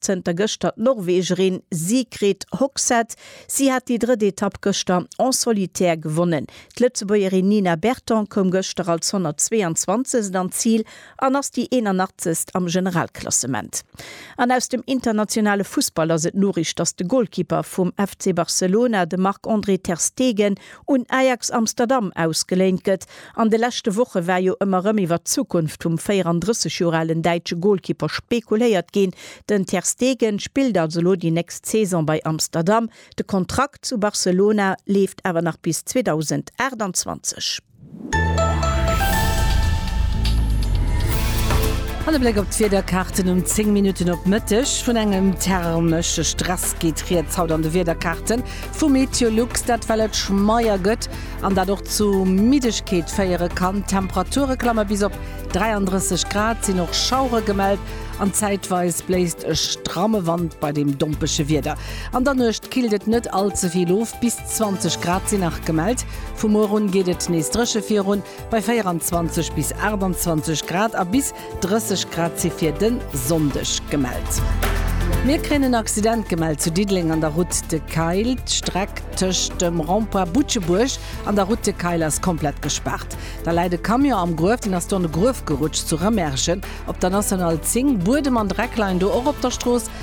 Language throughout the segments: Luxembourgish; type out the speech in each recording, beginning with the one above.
Zënter gëschter d'Norwegerin Sigrid Hogseth. Si hat déi drëtt Etapp gëschter en solitaire gewonnen. D'Lëtzebuergerin Nina Berton koum gëschter als 122. an d'Zil an ass déi 81. am Generalklassement. An aus dem internationale Fussball ass et d'Noriicht, dass de Golkipper vum FC Barcelona, de Marc-André ter Stegen, un Ajax Amsterdam ausgeléint gëtt. An de leschte Woche war jo ëmmer rëm iwwer d'Zukunft vum 34 Joer alen däitsche Golkipper spekuléiert ginn. Den Ter Stegen spillt also elo déi nächst Saison bei Amsterdam. De Kontrakt zu Barcelona leeft awer nach bis 2028. An e Bléck op d'Wiederkaarten um 10 Minutten op Mëtteg. Vun engem thermesche Stress geet rieds haut an de Wiederkaarten vu Meteolux. Dat well et schmeier gëtt an dat och zu Middegkeet féiere kann. D'Temperature klamme bis op 33 Grad, et sinn och Schauere gemellt an zäitweis bléist e stramme Wand bei deem dompege Wieder. An der Nuecht killt et net all ze vill of bis. 20 Grad sinn nach gemellt. Vu muer un geet et nees dréche virun, bei 24 bis 28 Grad a bis 30 Grad si fir de Sonndeg gemellt. Mir kréien en Accident gemellt zu Diddeleng an der Route de Kayl. D'Streck tëscht dem Rond-point Butschebuerg an der Route de Kayl ass komplett gespaart. Da läit e Camion am Gruef, deen ass do an e Gruef gerutscht zu Rëmerschen op der National 10. Buedem an Dreck leien do och op der Strooss.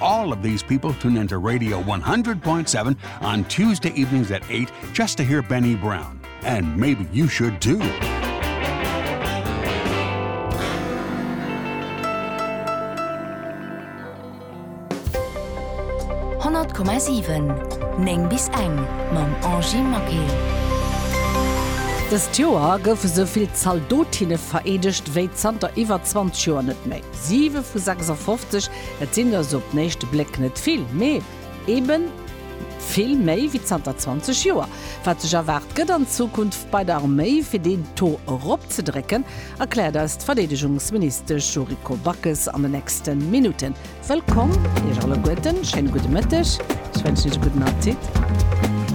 All of these people tune in to Radio 100.7 on Tuesday evenings at 8 just to hear Benny Brown. And maybe you should too. Neng bis eng mam Angie Maquet. Dëst Joer goufe sou vill Zaldotinne vereedegt wéi zanter iwwer 20 Joer net méi. Siwe vu 56 Et sinn der sou op den éischte Bléck net vill, mee eben vill méi wéi zanter 20 Joer. Wat sech erwaart gëtt an Zukunft bei der Arméi, fir deen Taux eropzedrécken, erkläert eis d'Verdeedegungsministesch Yuriko Backes an den nächste Minutten. Wëllkomm Iech alleguerten, schéine gudde Mëtteg, ech wënschen Iech e gudden Appetit.